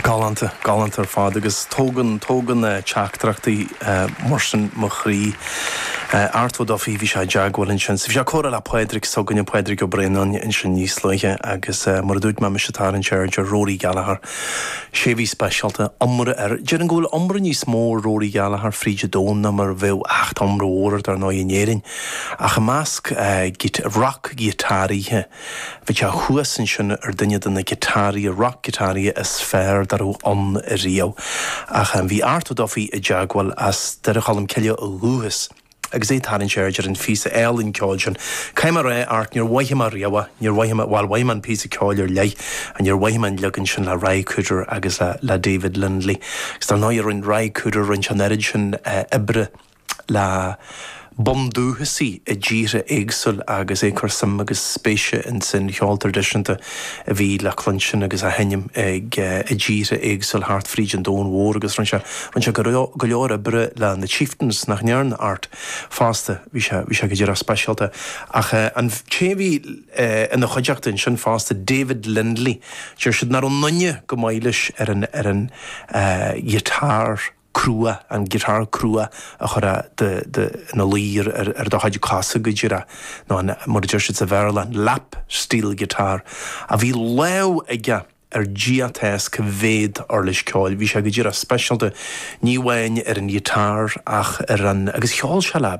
Galánta, galánta ar fad agus tógann, tógann teachtaireachtaí mar sin mo chroí. Art Ó Dufaigh, bhí sé i dteagmháil ansin. Bhí sé ag comhrá le Pádraig s'againne, Pádraig Ó Braonáin ansin níos luaithe agus mar a dúirt mé, mise ag tarraingt aird ar Rory Gallagher, is é a bhí speisialta, iomradh ar, déarfainn go bhfuil iomradh níos mó ar Rory Gallagher fríd an domhan ná mar a bheadh ach iomradh mór air dar ndóigh in Éirinn. Ach i measc roc-ghiotáraithe, bhí sé thuas ansin ar dhuine de na giotáraithe, roc-ghiotáraithe is fearr dá raibh ann riamh. Ach bhí Art Ó Dufaigh i dteagmháil, as Doire Cholm Cille ó dhúchas, agus é ag tarraingt aird ar an phíosa álainn ceoil sin. Caithfidh mé a rá, Art, níor mhothaigh mé riamh é, níor, bhuel, mhothaigh mé an píosa ceoil ar leith, ach níor mhothaigh mé an leagan sin le Ry Cooder agus le David Lindley. Agus dar ndóigh, rinne Ry Cooder, rinne sé an oiread sin oibre, le bundúchasaigh i dtíortha éagsúil agus é ag cur suim agus spéise ins an cheol traidisiúnta a bhí le cluinstin agus á sheinm i dtíortha éagsúil thart fríd an domhan mhór agus rinne sé rinne sé go leor oibre le The Chieftains, nach ndearna Art fosta? Bhí sé bhí sé go díreach speisialta ach an té a bhí ina chuideachta ansin fosta David Lindley, deir siad nach raibh aon duine chomh maith leis ar an ar an ghiotár. cruach, an guitar cruach a chuireann tú ina luí ar do chuid cosa, go díreach, nó an, mar a deir siad sa Bhéarla, an lap steel guitar, a bhí lámh aige ar Dia atá a fhios cá mhéad uirlis ceoil. Bhí sé go díreach speisialta, ní amháin ar an guitar ach ar an, agus cheol sé le.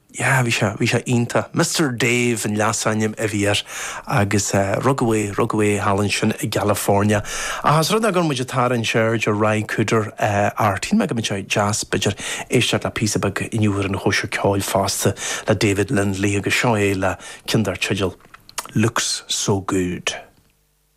Yeah, bhí sé, bhí sé iontach. Mister Dave an leasainm a bhí air agus eh, rugadh é, rugadh é thall ansin i gCalifornia. Ach os rud é go raibh muid ag tarraingt aird ar Ry Cooder eh, Art, shíl mé go mbeadh sé deas, b'fhéidir, éisteacht le píosa beag inniu ar an Chóisir Ceoil fosta le David Lindley agus seo é le ceann dar teideal Looks So Good.